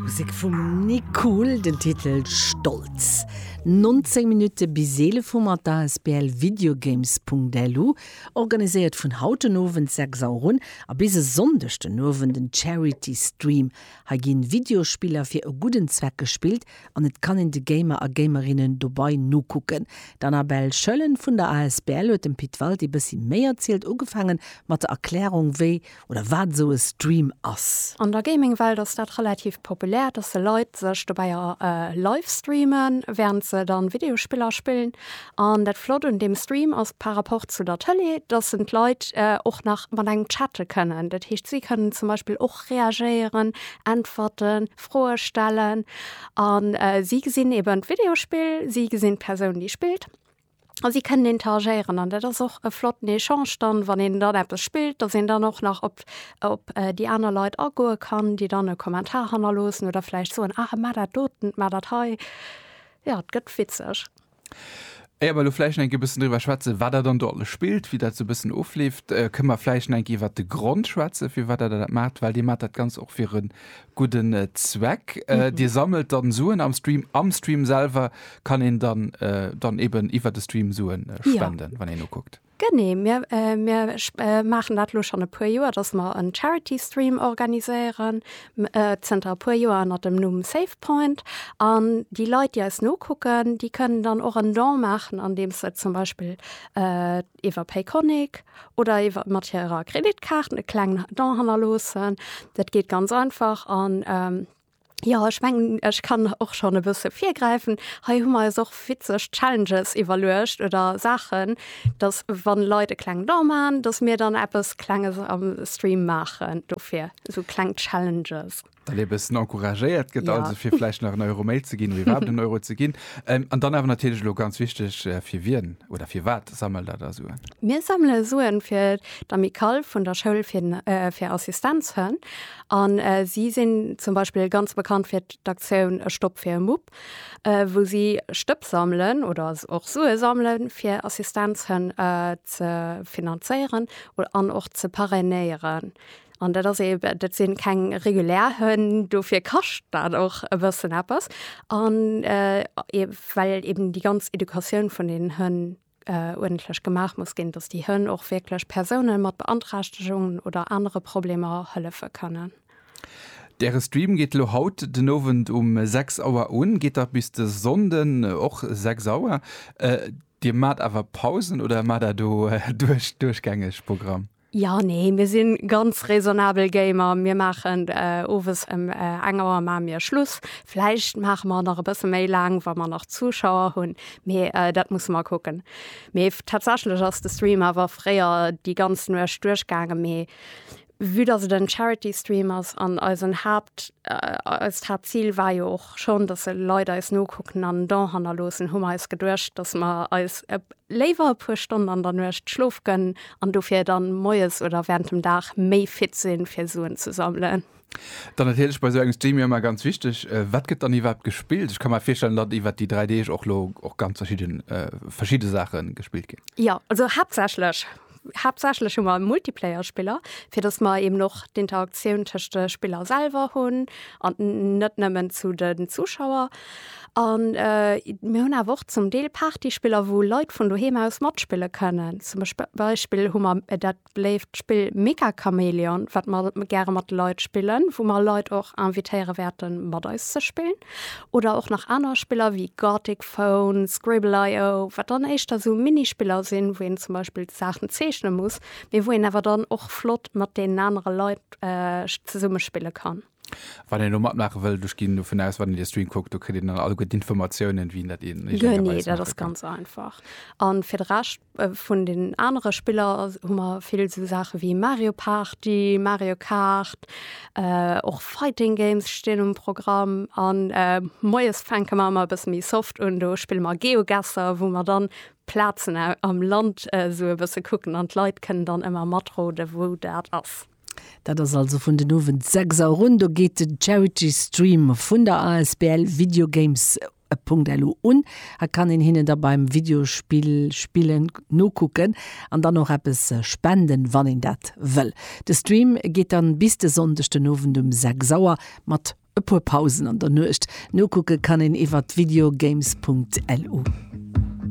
Musek vum Nick Kuhl, den Titel Stolz. 19 Minutte bis 11 Uhr mat der asbl Videogames.lu, organiséiert vun haut den Owend 6 Auer un a bis e Sonndeg den Owend en Charity Stream. Hei ginn Videospiller fir e gudden Zweck gespillt an et kann een de Gamer a Gamerinnen dobai nokucken. D'Annabelle Schöllen vun der asbl huet dem Pit Walti bëssi méi erzielt, ugefaangen mat der Erklärung wéi, oder wat esou e Stream ass. An der Gaming-Welt ass dat relativ populär, dass se Leit sech dobäi livestreamen, während se dann Videospiller spillen. An dat Flott un deem Stream ass par rapport zu der Tëlee, dass en d'Leit och nach mat engem chatte kënnen. Dat heescht, si kënnen zum Beispill och reagéieren, äntwerten, Froe stellen. An si gesinn eben d'Videospill, si gesinn d'Persoun, déi spillt. A si kënnen interagéieren an dat ass och e flotten Echange dann, wann een dann eppes spillt, datt een dann och nach op op déi aner Leit agoe kann, déi dann e Kommentar hannerloossen oder vläicht soen, ah mat dat doten, mat dat hei. Jo, et gëtt witzeg. Éier mer elo vläicht nach eng Kéier e bëssen driwwer schwätzen, wat Der dann do alles spillt, wéi dat esou e bëssen ofleeft, kënne mer vläicht nach eng Kéier iwwert de Grond schwätzen, firwat Der dat maacht, well Dir maacht dat Ganzt och fir e Gudden Zweck. Dir sammelt dann Suen am Stream. Am Stream selwer kann een dann dann eben iwwert de Stream Suen spenden, wann een ukuckt. Genee, mir mir maachen dat elo schonn e puer Joer, datt mer en Charity Stream organiséieren, zënter e puer Joer ënner dem Numm Save Point. An déi Leit, déi eis nokucken, déi kënnen dann och en Don maachen, andeems se zum Beispill iwwer Payconiq oder iwwer mat hirer Kreditkaart e klengen Don hannerloossen. Dat geet ganz einfach an ähm, ja ech mengen ech kann och schonn e bësse virgräifen. Hei hu mer eis och witzeg Challenges iwwerluecht oder Saachen, datt wann Leit e klengen Don maachen, datt mir dann eppes Klenges am Stream maachen dofir, esou kleng Challenges. Dat ee bëssen encouragéiert gëtt, also fir vläicht nach en Euro méi ze ginn, wéi iwwerhaapt en Euro ze ginn. An dann awer natierlech elo ganz wichteg, fir wien oder firwat sammelt Der da Suen? Mir sammele Suen fir d'Amicale vun der Schoul fir Assistenzhënn. A si sinn zum Beispill ganz bekannt fir d'Aktioun E Stopp fir e Mupp, wou si Stëpp sammelen oder och Sue sammelen, fir Assistenzhënn ze finanzéieren an och ze parrainéieren. An dat ass eben, dat sinn keng regulär Hënn, dofir kascht dat och e bëssen eppes. An well eben déi ganz Educatioun vun deenen Hënn uerdentlech gemaach muss ginn, datt déi Hënn och wierklech Persoune mat Beanträchtegungen oder anere Problemer hëllefe kënnen. Däre Stream geet elo haut den Owend um 6 Auer un, geet da bis de Sonnden och 6 Auer. Dir maacht awer Pausen oder maacht Der do duerchgängeg Programm? Jo, nee, mir sinn ganz raisonnabel Gamer. Mir maachen owes em eng Auer maache mir Schluss. Vläicht maache mer nach e bësse méi laang, wa mer nach Zuschauer hunn, mee dat musse mer kucken. Mee tatsächlech ass de Stream awer fréier déi ganz Nuecht duerchgaangen, mee vue dass et en Charity Stream ass an eisen Haapt, eist Haaptzil war jo och schonn, dass Leit eis nokucken an en Don hannerloossen, hu mer eis geduecht, dass mer eis léiwer e puer Stonn an der Nuecht Schlof gënn an dofir dann moies oder während dem Dag méi fit sinn fir Suen ze sammelen. Dann natierlech bei sou engem Stream jo ëmmer ganz wichteg, wat gëtt dann iwwerhaapt gespillt? Ech ka mer virstellen, datt iwwert déi 3 Deeg och lo och ganz verschidden verschidde Saache gespillt ginn. Jo, also haaptsächlech Haaptsächlech hu mer e Multiplayer-Spiller, fir dass mer eben och d'Interaktioun tëscht de Spiller selwer hunn an net nëmmen zu de Zuschauer. An mir hunn awer och zum Deel Partyspiller, wou Leit vun doheem aus matspille kënnen. Zum Beispill hu mer dat beléift Spill Mecha Chameleon, wat mer gäre mat de Leit spillen, wou mer Leit och invitéiere wäerte mat eis ze spillen. Oder och nach aner Spiller wéi Gartic Phone, Scribble.io, wat dann éischter sou Minispiller sinn, wou een zum Beispill d'Saachen zeechne muss, mee wou een awer dann och flott mat deenen anere Leit zesumme spille kann. Wann een elo matmaache wëllt, ech ginn dovun aus, wann een de Stream kuckt, do kritt een dann alleguer d'Informatiounen, wéi een dat eegenegerweis maache kann. Genee, dat ass ganz einfach. A fir de Rescht, Vun den anere Spiller hu mer vill esou Saache wéi Mario Party, Mario Kart, och Fighting Games stinn um Programm. An moies fänke mer ëmmer e bësse méi soft un, do spille mer Geogesser, wou mer dann Plazen am Land esou e bësse kucken an d'Leit kënnen dann ëmmer matroden, wou dat ass. Dat ass also vun den Owend 6 Auer un, do geet den Charity Stream vun der asbl Video Games E Punkt elo un, hat kann een hinnen da beim Videospill spillen nokucken an dann och eppes spenden wann een dat wëll. De Stream geet dann bis de Sonndeg den Owend um 6 Auer mat e puer Pausen an der Nuecht. Nokucke kann een iwwert videogames.lu.